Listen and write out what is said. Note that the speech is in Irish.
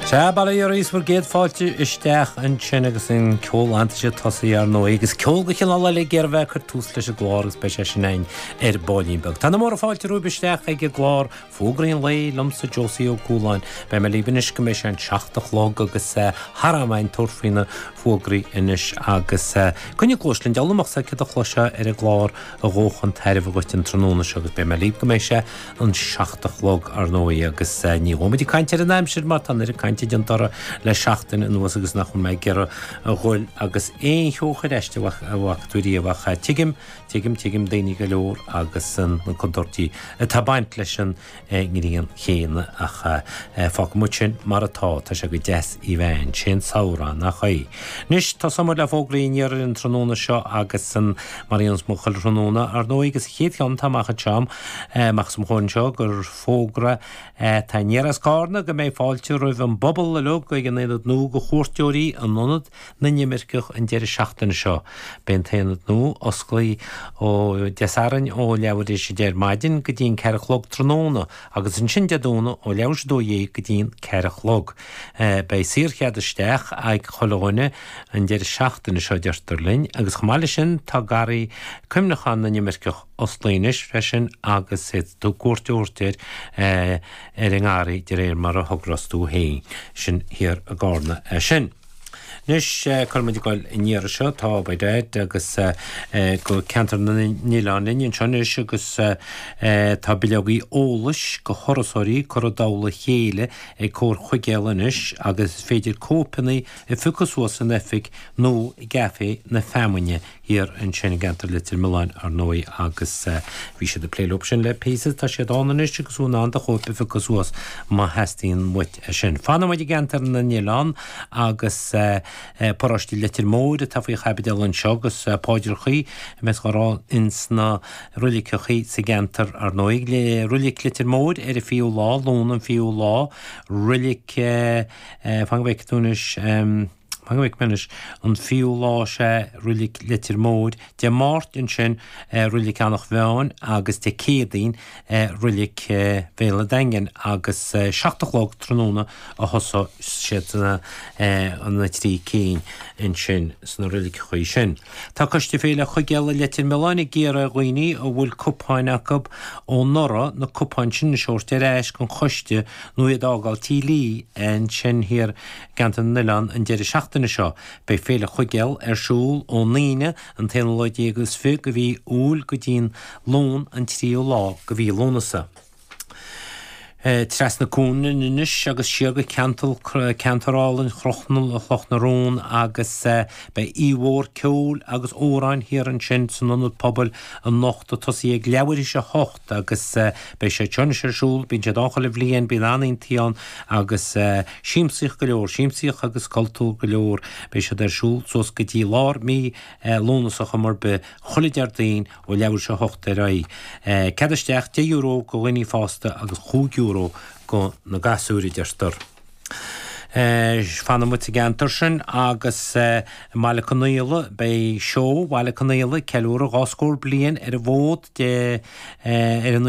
Sea, bail ó Dhia oraibh is bhur gcéad fáilte isteach ansin agus an ceol aitheantais tosaigh ar ndóigh, agus ceol de chineál eile ag iarraidh a bheith ag cur tús leis an gclár agus beidh sé sin againn ar baillín beag. Tá na múrtha fáilte romhaibh isteach ag an gclár Fógraí an Lae liomsa Josie Ó Cualáin. Beidh mé libh anois go mbeidh sé an seacht a chlog agus thar am againn tabhairt faoi na fógraí anois agus coinnigh cluais linn, diabhal amach céard a chloisfeá ar an gclár a ghabhfadh chun tairbhe dhuit an tráthnóna seo agus beidh mé libh go mbeidh sé an seacht a chlog, ar ndóigh, agus ní ghabhfaidh muid ag caint ar an aimsir mar tá an oiread cainte déanta uirthi le seachtain anuas agus nach bhfuil mé ag iarraidh a dhul agus aon cheo a chur aisti a bhfaca tú riamh ach tuigim, tuigim, tuigim daoine go leor agus na contúirtí atá ag baint leis an ngrian chéanna ach fágfaidh muid sin mar atá. Tá sé go deas í a bheith ann, sé an samhradh, nach é? Anois, tosóidh muid le fógraí aniar ar an tráthnóna seo agus mar a dhéanann muid chuile thráthnóna, ar ndóigh, agus an chéad cheann atá amach anseo agam, amach os mo chomhair anseo gur fógra atá aniar as Carna go mbeidh fáilte roimh an bpobal uilig ag an aonad nua do chuairteoirí in Ionad na nImirceach an deireadh seachtaine seo. Beidh an t-aonad nua osclaithe ó Dé Sathairn ó leathuair tar éis a deich ar maidin go dtí an ceathair a chlog tráthnóna agus ansin Dé Domhnaigh ó leathuair tar éis a dó dhéag go dtí an ceathair a chlog. Beidh saorchead isteach ag chuile dhuine an deireadh seachtaine seo, deirtear linn, agus chomh maith leis sin tá garraí cuimhneacháin na n-imirceach, osclaithe anois freisin agus féadfaidh tú cuairt a thabhairt air ar an ngarraí de réir mar a thogras tú féin. Sin thiar i gCarna é sin. Anois cá bhfuil muid ag goil an iarraidh seo, tá By Dad agus go ceantar na n-oileán linn anseo anois agus tá bileogaí eolais do thurasóirí curtha i dtoll a chéile ag Comhar Chuigéal anois agus is féidir cóipeanna a phiocadh suas san oifig nó i gCafé na Feamainne thiar ansin i gceantar Leitir Mealláin, ar ndóigh, agus bhí siad ag plé leo sin le píosa. Tá siad ann anois agus tú in ann do chóip a phiocadh suas má theastaíonn uait é sin. Fanfaidh muid i gceantar na nOileán agus paróiste Leitir Móir atá faoi chaibidil anseo agus paidreachaí a bheas dhá rá, ins na roiliceachaí sa gceantar, ar ndóigh. Roilic Leitir Móir ar an fichiú lá, Luan an fichiú lá. Roilic, fan go bhfeice tú anois. Mar a fheicim anois, an fichiú lá, sea, roilig Leitir Móir, Dé Máirt ansin roilig Eanach Mheáin agus Dé Céadaoin roilig Bhéal an Daingin agus 7 a chlog tráthnóna a thosós siad na trí cinn ansin sna roiligeachaí sin. Tá Coiste Féile Chuigéil Leitir Mealláin ag iarraidh ar dhaoine a bhfuil cupáin acu ó anuraidh na cupáin sin a thabhairt ar ais chuig an gCoiste nó iad a fhágáil Tigh Lee ansin thiar Ceantar na nOileán An deireadh seachtaine seo beidh Féile Chuigéil ar siúl ón Aoine an t-aonú lá déag is fiche de mhí Iúil go dtí'n Luan an tríú lá de mhí Lúnasa. Trasna cuan anois agus siar go ceantar álainn Chloch na Rón agus beidh oíche mhór ceoil agus amhráin thiar ansin san Ionad Pobail anocht ag tosaí ag leathuair tar éis a agus beidh siad anois ar siúl, bíonn siad ann chuile bhliain, bíonn an-oícheantaí ann agus siamsaíocht go leor, siamsaíocht agus cultúr go leor, beidh siad ar siúl suas go dtí lár mí Lúnasa ar chuma ar bith, chuile Déardaoin ó leathuair tar éis a hocht ar aghaidh. Cead isteach deich euro go dhaoine fásta agus chúig euro go na gasúir, a deirtear. Fanfaidh muid sa gceantar sin agus i mBaile Conaola beidh Seó Bhaile Conaola ag ceiliúradh dhá scór bliain ar an bhfód Dé ar an